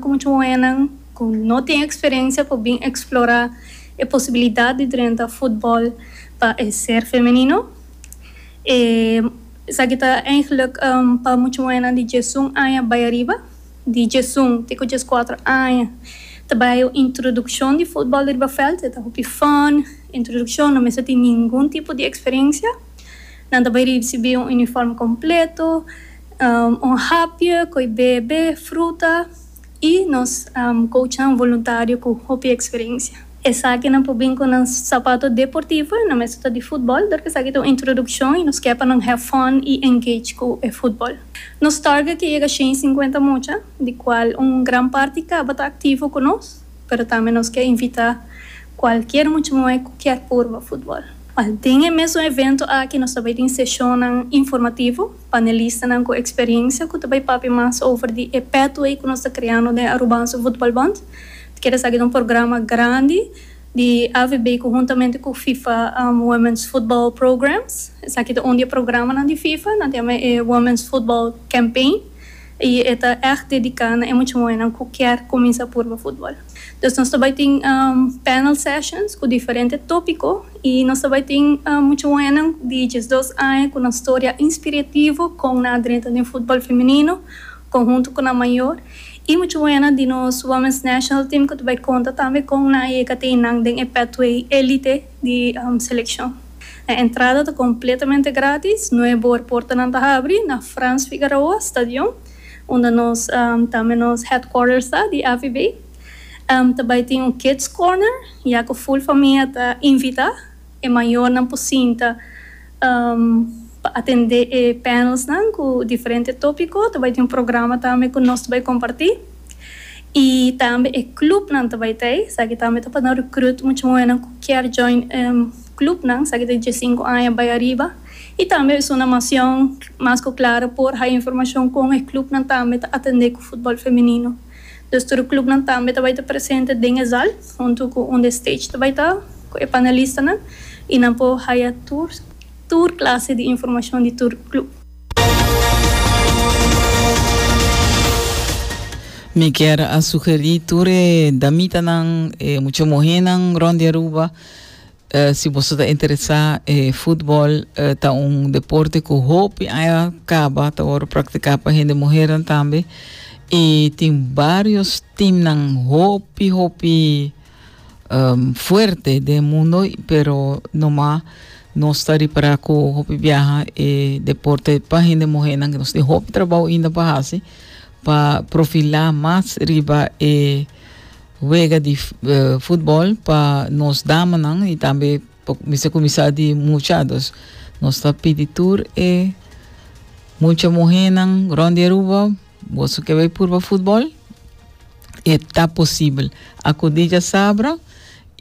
Ku muchu hoennan ku no tin eksperensia por bin eksplorá e posibilidat di drenta futbòl pa e ser femenino. E esaki ta eingeluk pa muchu hoennan di djesun aña bai ariba, di djesun te ku djeskuater aña, ta bai un introdukshon di futbòl riba vèlt. E ta hopi fòn, introdukshon, no mester tin ningun tipo di eksperensia. Nan ta bai risibí un unifòrm kompleto. Un hapje koe bebe, fruta i nos kouchan voluntario ku hopi eksperensia. Esakinan por bin ku nan sapato deportivo i nan mester ta di futbòl dor ku esaki ta un introdukshon i nos kier pa nan have fun i engage ku e futbòl. Nos target ke yega shen i sinkuenta mucha di kual un gran parti tabata aktivo ku nos pero tambe nos kier invitá kualkier mucha muhé ku kier purba futbòl. Den e mesun evento aki nos ta bai tin seshonnan informativo. Panelistanan ku eksperiencia ku ta bai papia mas over di e pathway ku nos ta kreando den Arubanse Voetbalbond. Ta kere sa ki ta un programa grandi di AVB ku huntamente ku fifa Women's Football Programs. Esaki ta un di e programanan di fifa. Nan ta yama e Women's Football Campaign i e ta ègt dediká na e mucha muhènan ku kier kuminsá purba futbol. Dus nos ta bai tin panel sessions ku diferente topiko i nos ta bai tin mucha hoennan di diesdos aña ku nan storia inspirativo kon nan a drenta den futbol femenino konhunto ku nan mayor i mucha hoennan di nos Women's National Team ku ta bai konta tambe kon nan a yega te nan den e pathway elite di selekshon. E entrada ta kompletamente gratis. Nuebe or portanan ta habri na Frans Figueroa stadion. unda nos tambe nos headquarters ta di AVB. Ta bai tin un kids corner ya cu full famia ta invita. E mayornan por sinta pa atende e panelsnan cu diferente topico. Ta bai tin un programa tambe cu nos ta bai comparti y tambe e clubnan ta bai ta ei. Esaki tambe ta pa nan recruit mucha muhernan cu kier join clubnan esaki ta di dje y sinku aña bai ariba. Y tambe Zona Macion mas cu claro por haya informacion con e clubnan tambe ta atende cu futbol femenino. Dus tur clubnan tambe ta bay ta presente den e zal hunto cu un de stage ta bay ta cu e panelistanan y nan por haya tur tur clase di informacion di tur club. Mi kier a sugeri tur e damitanan, e mucha muhernan rond di Aruba. Eh, si boso ta interesá, e futbol eh, ta un deporte ku hopi aña kaba ta wòrdu praktiká pa hende muhernan tambe. I tin varios timnan hopi hopi em, fuerte den mundo, pero nomá nos ta ripará ku hopi biaha e deporte pa hende muhernan nos tin hopi trabou inda pa hasi pa profilá mas riba e Wega di futbol pa nos damanan y tambe mester cuminsa di mucha. Dus nos ta pidi tur e mucha muhernan rond di Aruba, boso ke bay purba futbol? E ta posibel. Acudi djasabra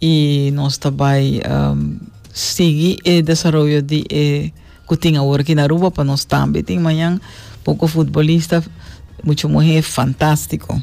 y nos ta bay um, sigui e desaroyo di e cu tin awor aki na Aruba pa nos tambe tin mañan poco futbolista, mucha muher fantastico.